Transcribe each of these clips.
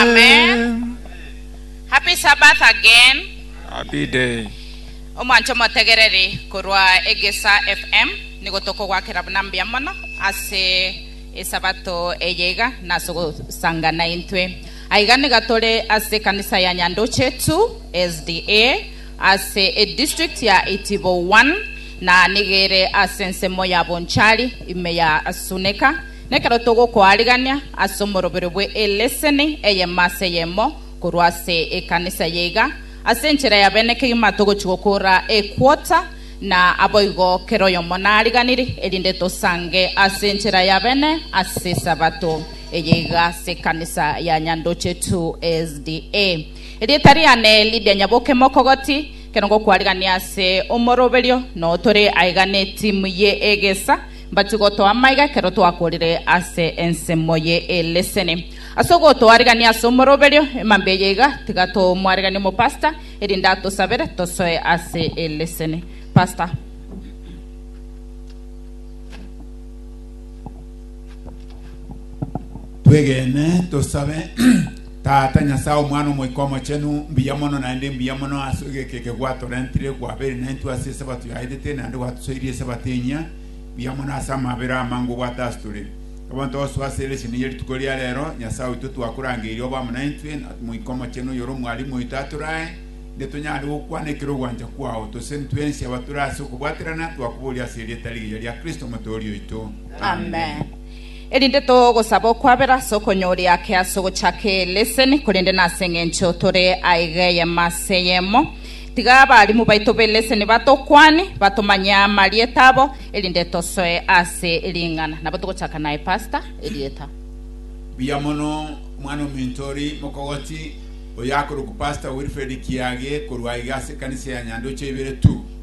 Amen. Happy Sabbath again. Happy day. Omwancho motegereri korwa Egesa FM nigo tokogwakera buna mbuya mono ase esabato eye iga nase gosangana intwe. Aiga niga tore ase ekanisa ya Nyandoche 2 SDA ase edistrict ya Itibo 1 na nigere ase ensemo ya Bonchari ime ya Asuneka Nekero togokoarigania ase omorobero bwe eleseni eyemo ase eyemo korwa ase ekanisa eye iga, ase enchera ya bene kegima togochi gokora equota, na aboigo kera oyomo nariganiri, erinde tosange ase enchera ya bene ase esabato eye iga ase ekanisa ya Nyandochetu SDA. Erieta riane Lydia Nyaboke Mokogoti, kero ngokoarigania ase omoroberio, noo tore aiga ne timu ye egesa, Mbache gotoa amaiga ekero twakorire ase ensemo ye eleseni. Ase ogotoarigania ase omoroberio, emambia eye iga, tiga tomwariganie omopasta, erinde atosabere tosoe ase eleseni. Pasta. Twegene tosabe. Tata, Nyasae, Omwana, Omoika Omochenu, mbuya mono naende mbuya mono ase egeka eke gwatorentire kwabeire naintwe ase Esabato yaetete naende gwatosoirie Esabato enyia. Mbuya mono ase amabera amange obwate ase tore. Nabo ntogosoa ase ere cheni y'erituko ria rero, Nyasae oito, twakuraangeire obe amo naintwe, na Omoika Omochenu oyore Omwalimu oito atorae, inde tonyare gokwana ekero ogwancha kwao. Tose intwe ense abatore ase okobwaterana, twakoboria ase erieta rigiya ria Kristo, Omotooria oito. Amen. erinde togosaba okwabera ase okonyooria ake ase ogochaka eleseni, korende nase engencho tore aiga eyemo ase eyemo. Tiga abarimu baito b'eleseni batokwane, batomanye amarieta abo, erinde tosoe ase ring'ana. Nabo togochaka naye Pastor, erieta. Mbuya mono omwana ominto ori mokogoti oyo akorokwa Pastor Wilfred Kiage korwa aiga ase ekanisa ya Nyandoche ibere tu.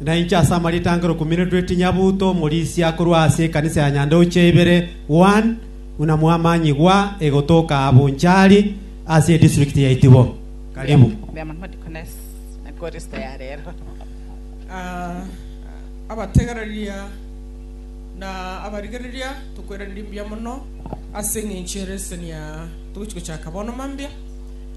na inche ase amaritangero kumi na rweti nyabuto omorisia korwa ase ekanisa ya Nyandeuche ibere, One, buna mwamanyigwa egotoka aa Bonchari ase edistrict ya Itibo. Karibu. Ah, abategereria na abarigereria, tokoiraneria mbuya mono ase eng'encho y'ereseni aa togochia gochaka bono mambia.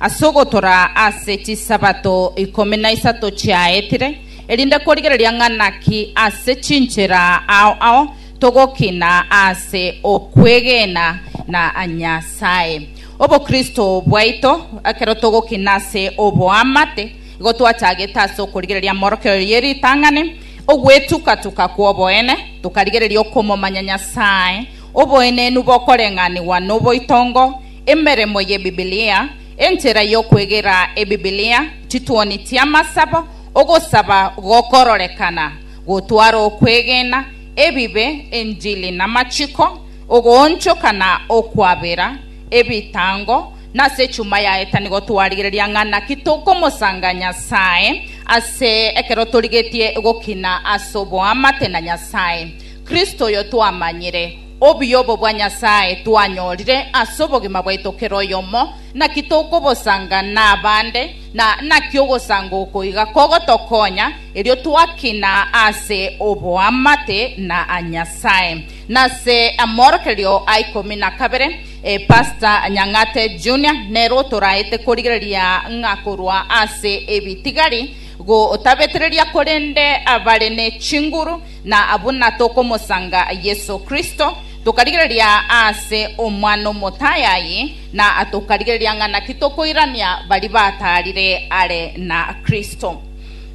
Ase ogotora ase chisabato ikomi na isato chiaetire, erinde kworigereria ng'a naki ase chinchera ao ao togokina ase okwegena na Nyasae. Obokristo bwaito, ekero togokina ase oboamate, igo twachagete ase okorigereria morokero ye ritang'ani, ogwetuka-tuka kw'oboene, tokarigereria okomomanya Nyasae, oboenenu bokoreng'anigwa noboitongo, Emeremo y'Ebibilia, Enchera y'okwegera Ebibilia, chituoni chi'amasabo, ogosaba gokororekana, gotwara okwegena, ebibe, enchili namachiko, ogoonchoka na okwabera, ebitango, nase chuma yaetani gotwarigereria ng'a naki tokomosanga Nyasae ase ekero torigetie gokina ase oboamate na Nyasae, Kristo oyo twamanyire, Obuya obo bwa Nyasae twanyorire ase obogima bwaito kera oyomo, naki tokobosanga nabande, na naki ogosanga oko iga kogotokonya, erio twakina ase oboamate na Nyasae. Nase amorokererio a ikomi na kabere, Pastor Nyang'ate Junior nere otoraete korigereria ng'a korwa ase ebitigari gotabetereria korende abare ne chinguru, Na buna tokomosanga Yeso Kristo, tokarigereria ase Omwana omotaai aye, na tokarigereria ng'a naki tokoirania baria bataarire are na Kristo.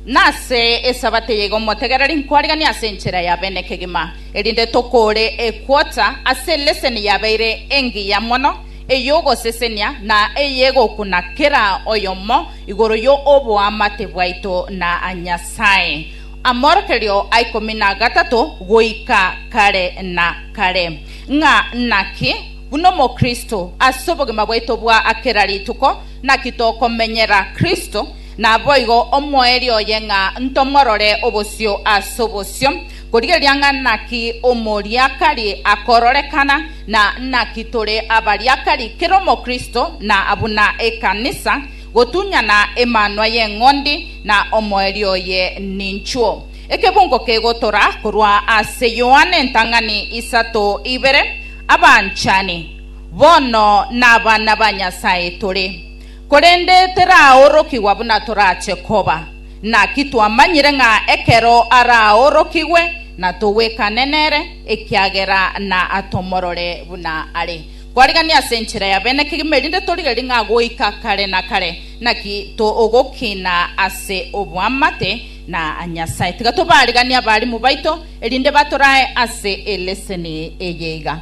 Na ase Esabato eye y'Omotegereri nkwarigania ase enchera ya bene kegima, erinde tokore ekwota ase eleseni yabeire engiya mono ey'ogosesenia na eyegokuna kera oyomo igoro y'oboamate bwaito na Nyasae. Amorokerio a ikomi na gatato goika kare na kare. Ng'a naki, buna Omokristo, ase obogima bwaito bwa kera rituko, naki tokomenyera Kristo, naboigo omoerio oye ng'a ntomorore obosio ase obosio, korigereria ng'a naki omoriakari akororekana, na naki tore abariakari, kera Omokristo na buna ekanisa, Gotunyana emanwa y'eng'ondi na omoerio oye ninchwo. Ekebungo kegotora korwa ase Yohana entang'ani isato ibere, Abanchani, bono nabana ba Nyasae tore, korende teraorokigwa buna torache koba. Naki twamanyire ng'a ekero araorokigwe natogwekane nere, ekiagera natomorore buna are. Kwarigania ase enchera ya bene kegima, erinde torigerie ng'a goika kare na kare naki togokina ase oboamate na Nyasae. Tiga tobariganie abarimu baito, erinde batorae ase eleseni eye iga.